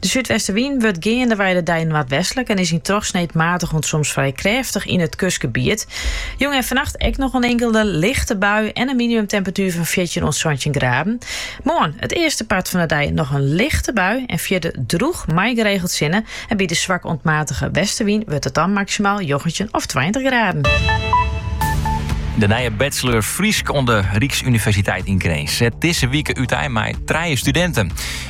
De súdwestewyn wurdt geandewei de dei noardwestlik en is yn trochsneed maatich oant soms frij krêftich yn it kustgebiet. Jûn en fannacht ek noch in inkelde lichte bui en in minimumtemperatuer fan fjirtjin oant santjin graden. Moarn, it earste part fan de dei noch in lichte bui en fierder drûch mei geregeld sinne en by de swak oant matige westewyn wurdt it dan maksimaal njoggentjin of tweintich graden. De nije bachelor Frysk oan de Ryksuniversiteit yn Grins set dizze wike útein mei trije studinten.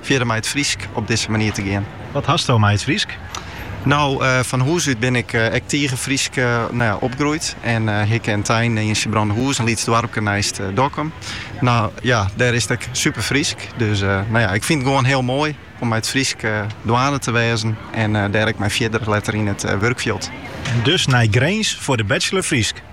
fierder mei it Frysk op dizze manier te gean. Wat hasto mei it Frysk? No, fan hûs út bin ik ek tige Frysk opgroeid en hikke en tein yn Sibrandahûs, in lyts doarpke neist Dokkum. No ja, dêr is it ek super Frysk. Dus no ja, ik fyn it gewoan hiel moai om mei it Frysk dwaande te wêzen en dêr ek mei fierder letter yn it wurkfjild. En dus nei Grins foar de bachelor Frysk?